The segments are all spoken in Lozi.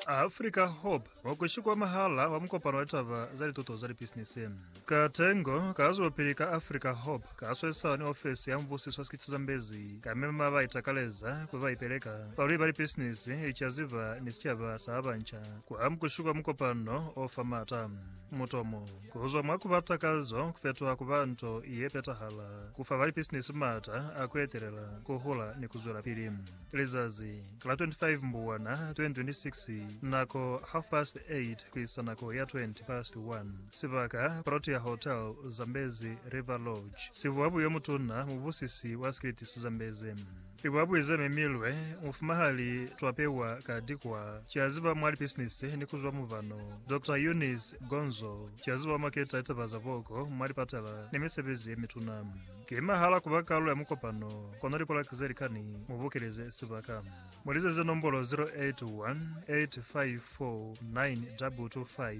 Africa Hope wa ku Shikwamahala wa mukopano wa taba za lituto za lipisinisi. Katengo ka zwelopili ka Africa Hope ka swesisana ni ofisi ya mubusiso wa sikiti sa Zambezi ka mema ba itakaleza kuli ba ipeleka balweli ba lipisinisi, licaziba ni sicaba sa ba banca ku amu ku shikwa mukopano o fa maata. Mutomo. Ku zwa mwa ku ba takazo ku fetoha ku ba nto ye petahala, ku fa balipisinisi m'ata a ku etelela, ku hula ni ku zwelapili. Lizazi la 25 Mbubwana 2026, nako half past 8 ku isa nako ya 20 past 1, sibaka Protea Hotel, Zambezi River Lodge, Sivuabu yo Mutuna, mubusisi wa Skirtis Zambezi. I ba buiza mi milwe mufuma ha li twa pewa ka dikwa. Ki a ziba mwa lipisinisi ni ku zwa mubano. Doctor Eunice Gonzo ki a ziba mwa keta litaba za boko mwa lipatala ni misebezi ye mituna. Ki mahala ku ba kalu ya mukopano, kono likolaki ze likani mu bokeleze sibaka. Mu lizeze nombolo 0818549225.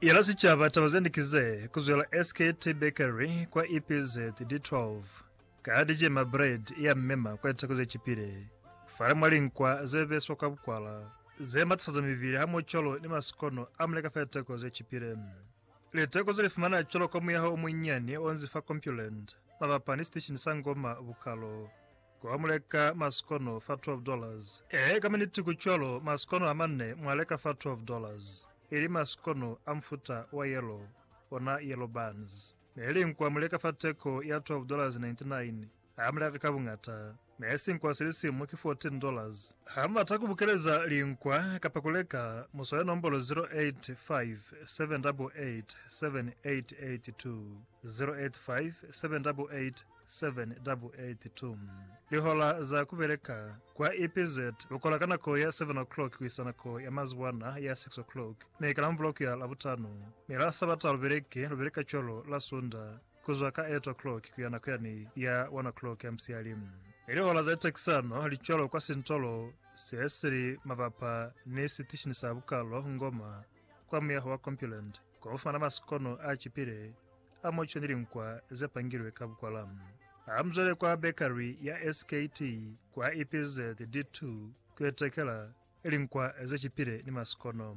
Yela sicaba taba zende ki ze, Ku zwela SKT Bakery kwa EPZ di 12, Ka di cema bread ya mmema kwa litako ze cipile, Fale mwa linkwa ze beswa kwa bukwala, Ze matafaza mibili hamoho cwalo ni masikono a muleka fa litako ze cipile. Liteko ze li fumana cwalo ka muyaho o munyinyani o nzi fa Compuland, mabapa ni siteshini sa Ngoma Bukalo, ko wa mu leka masikono fa twelve dollars. Ee, ka miniti ku cwalo, masikono a mane mwa leka fa twelve dollars, ili masikono a mufuta wa yellow, ona yellow buns. Ne li nku a mu leka fa teko ya twelve dollars ninety nine. Ha mu laka ka buñata, ne sinkwa si li simu ki $14. Ha mu bata ku bukeleza linkwa kapa ku leka, mu swale nombolo 0857887882, 0857887882. Lihola za ku beleka, Kwa EPZ, lu kola ka nako ya 7 o'clock ku isa nako ya mazuwana ya 6 o'clock, mi ka Lamvula ku ya Labutano, mi la Sabata lu beleki, lu beleka cwalo la Sunda. ku zwa ka eight o'clock ku ya nako ya ni ya one o'clock ya musihali. I lihola za tatisano li cwalo kwa sintolo se si li mabapa ni sitishini sa bukalo Ngoma kwa muyaho wa Compuland ko fumana masikono a cipile a moco ni linkwa ze pangilwe ka bukwala. Ha mu zwele kwa bakery ya SKT kwa EPZ D2 ku itekela linkwa ze cipile ni masikono.